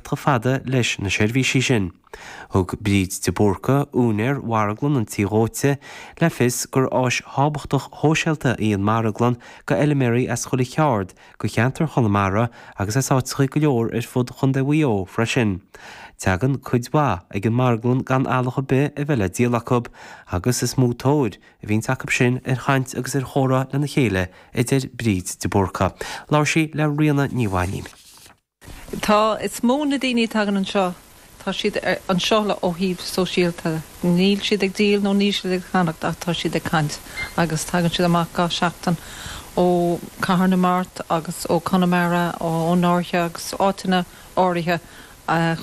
Tá fáil leis na seirbhísí sin. Thug Bríd de Búrca, úinéar Mharglann an Tí Dóite, le fios gurb áis thábhachtach shóisialta í an Marglann go fheilméaraí as chuile cheard go cheantar Chonamara agus as áiteacha go leor ar fud Chondae Mhuigh Eo freisin. Teagann cuid mhaith ag an Marglann gan eallach ar bith a bheith le díol acu agus is mó tóir a bhíonns acu sin ar chaint agus ar chomhrá lena chéile a deir Bríd de Búrca. Labhair sí le Ríona Ní Mhainín. Tá. Is mó na daoine a tagann anseo, tá siad anseo le ó thaobh sóisialta. Níl siad ag díol nó níl siad ag ceannacht ach tá siad ag caint agus tagann siad amach gach seachtain ó Cathair na Mart agus ó Conamara, ón Fháirche agus áiteanna áirithe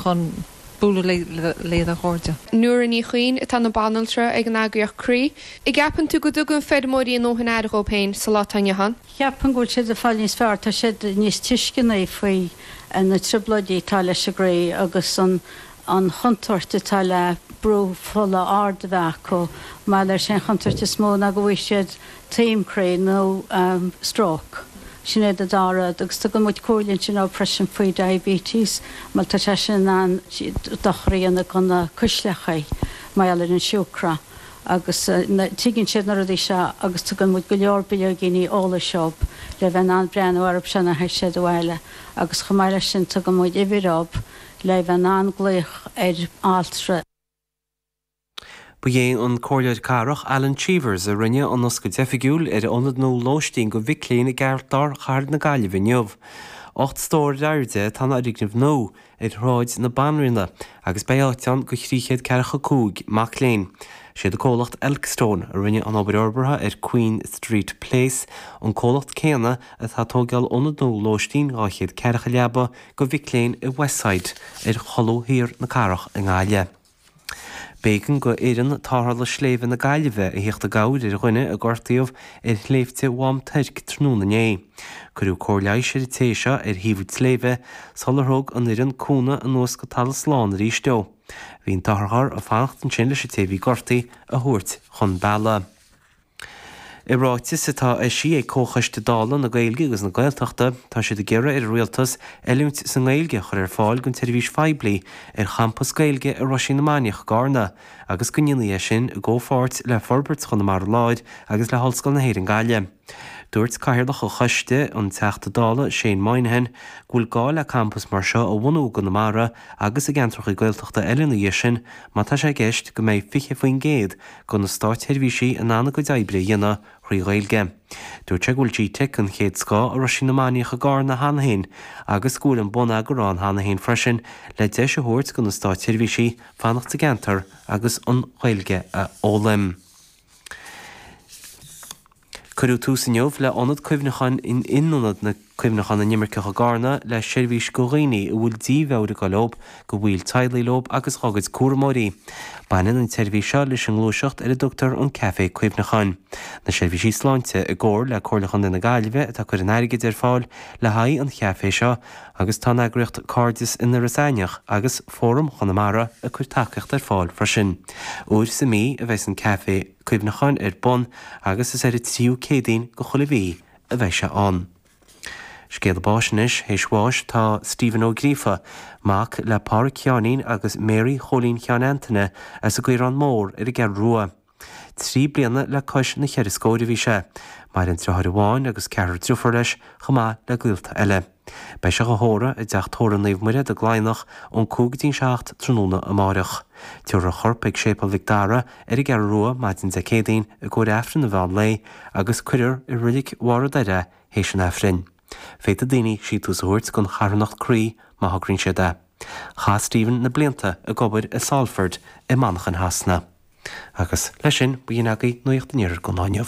chun bualadh le a gcairde. Nóra Ní Chuinn atá ina banaltra ag an eagraíocht Croí. An gceapann tú go dtugann feirmeoirí a ndóthain aire dhóibh féin sa lá atá inniu ann? Cheapfainn go bhfuil siad ag fáil níos fearr, tá siad níos tuisceanaí faoi na trioblóidí atá leis an gcroí agus an chontúirt atá le brú fola ard a bheith acu mar is é an chontúirt is mó ná go bhfaighidh siad taom croí nó stróc. Sin iad an dá rud agus tugann muid comhairle ansin dóibh freisin faoi diabetes mar tá sé sin in ann dochar a dhéanamh do na cuisleacha mar gheall ar an siúcra. agus tuigeann siad na rudaí seo agus tugann muid go leor bileoigíní eolais dóibh le bheith in ann breathnú orthu seo nuair a théas siad abhaile agus chomh maith leis sin tugann muid uimhir dóibh le bheith in ann glaoch ar altra. Ba é an Comhairleoir Cathrach Alan Cheevers a rinne an oscailt oifigiúil ar Ionad nua Lóistín go Mhic Léinn i gceartlár Chathair na Gaillimhe inniu. Ocht stór ar airde atá an foirgneamh nua, ar Shráid na Banríona agus beidh áit ann go thrí chéad ceathracha cúig mac léinn. Siad an comhlacht Elkstone a rinne an obair fhorbartha ar Queen Street Place, an comhlacht céanna atá ag tóigeáil ionad nua lóistín dhá chéad ceathracha leaba go mhic léinn i Westside, ar cholbha thiar na cathrach i nGaillimh. B'éigean go Fhoireann Tarrthála Sléibhe na Gaillimhe a theacht i gcabhair ar dhuine a gortaíodh ar Shléibhte Mhám Toirc tráthnóna inné. Cuireadh cóir leighis ar an té seo ar thaobh an tsléibhe sular thug an fhoireann cúnamh anuas go talamh slán arís dó. Bhí an t-otharcharr ag fanacht ansin leis an té a bhí gortaithe a thabhairt chun bealaigh. I ráiteas atá eisithe ag Comhchoiste Dála na Gaeilge agus na Gaeltachta, tá siad ag iarraidh ar an Rialtas oiliúint sa nGaeilge a chur ar fáil don tseirbhís phoiblí ar champas Gaeilge i Roisín na Mainiach, i gCarna, agus go ndéanfaí é sin i gcomhpháirt le Forbairt Chonamara Láir agus le hOllscoil na hÉireann Gaillimh. Dúirt Cathaoirleach an Choiste, an Teachta Dála Shane Moynihan, go bhfuil gá le campas mar seo a bhunú i gConamara agus i gceantracha Gaeltachta eile ina dhiaidh sin má tá sé i gceist go mbeidh 20% go na státseirbhísigh in ann a gcuid oibre a dhéanamh thrí Ghaeilge. Dúirt sé go bhfuil GTeic den chéad scoth i Roisín na Mainiach i gCarna cheana féin agus go bhfuil an bonneagar ann cheana féin freisin le deis a thabhairt do na státseirbhísigh fanacht sa gceantar agus an Ghaeilge a fhoghlaim. Cuireadh tús inniu le Ionad Cuimhneacháin in Ionad na Cuimhneachán na nImirceach i gCarna le seirbhís go dhaoine a bhfuil dímheabhair ag goil leo, go bhaill teaghlaigh leo agus dhá gcuid cúramóirí. Baineann an tseirbhís seo leis an ngluaiseacht ar a dtugtar an Café Cuimhneacháin. Na Seirbhísí Sláinte i gcomhar le Comhairle Chontae na Gaillmhe atá ag cur an airgid ar fáil le haghaidh an Chafé seo agus tá an eagraíocht Cairdeas in Iorras Aithneach agus Fóram Chonamara ag cur tacaíocht ar fáil freisin. Uair sa mí a bheas an Café Cuimhneacháin ar bun agus is ar an tríú Céadaoin de chuile mhí a bheidh sé ann. Scéala báis anois théis bháis tá Stephen Ó Gríofa, mac le Pádhraic Sheáinín agus Mary Chóilín Sheáin Antaine as an gCaorán Mór ar an gCeathrú Rua. Trí bliana le cois na cheithre scóir a bhí sé. Maireann driotháir amháin agus ceathrar driofúr leis chomh maith le gaolta eile. Beidh sé dhá thórramh i dTeach Tórraimh Naomh Muire i gCladhnach ón 5-7 tráthnóna amáireach. Tiúrfar a chorp ag Séipéal Mhic Dara ar an gCeathrú Rua maidin Dé Céadaoin i gcomhair Aifrinn an mheán lae agus cuirfear i roilig Bharr an Doire théis an Aifrinn. Féadfaidh daoine síntiús a thabhairt gon charthanacht Croí má thograíonn siad é. Chaith Stephen na blianta ag obair i Salford i Manchain Shasana. Agus leis sin b'in é agaibh Nuacht an Iarthair gon lá inniu.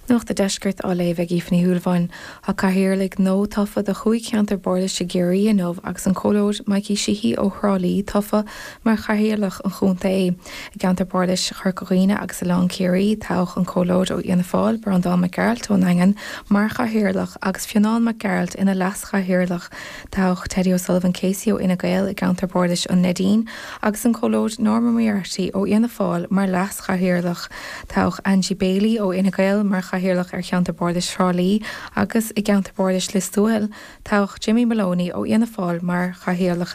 Nuacht a' Deiscirt á léamh ag Aoife Ní Shúilleabháin. Tá Cathaoirligh nua tofa do chúig cheantar bardais i gCiarraí inniu agus an Comhairleoir Mikey Sheehy ó Thrá Lí tofa mar Chathaoirleach an Chontae. I gceantar bardais Chorca Dhuibhne agus Oileán Ciarraí, toghadh an Comhairleoir ó Fhianna Fáil, Breandán Mac Gearailt ón nDaingean, mar Chathaoirleach agus Fionnán Mac Gearailt ina Leas-Chathaoirleach. Toghadh Teddy O'Sullivan-Casey ó Fhine Gael i gceantar bardais an Neidín agus an Comhairleoir Norma Moriarty ó Fhianna Fáil mar Chathaoirleach. Toghadh Angie Baily ó Fhine Gael mar Chathaoirleach ar Cheantar Bardais Thrá Lí agus i gCeantar Bardais Lios Tuathail, toghadh Jimmy Moloney ó Fhianna Fáil mar Chathaoirleach.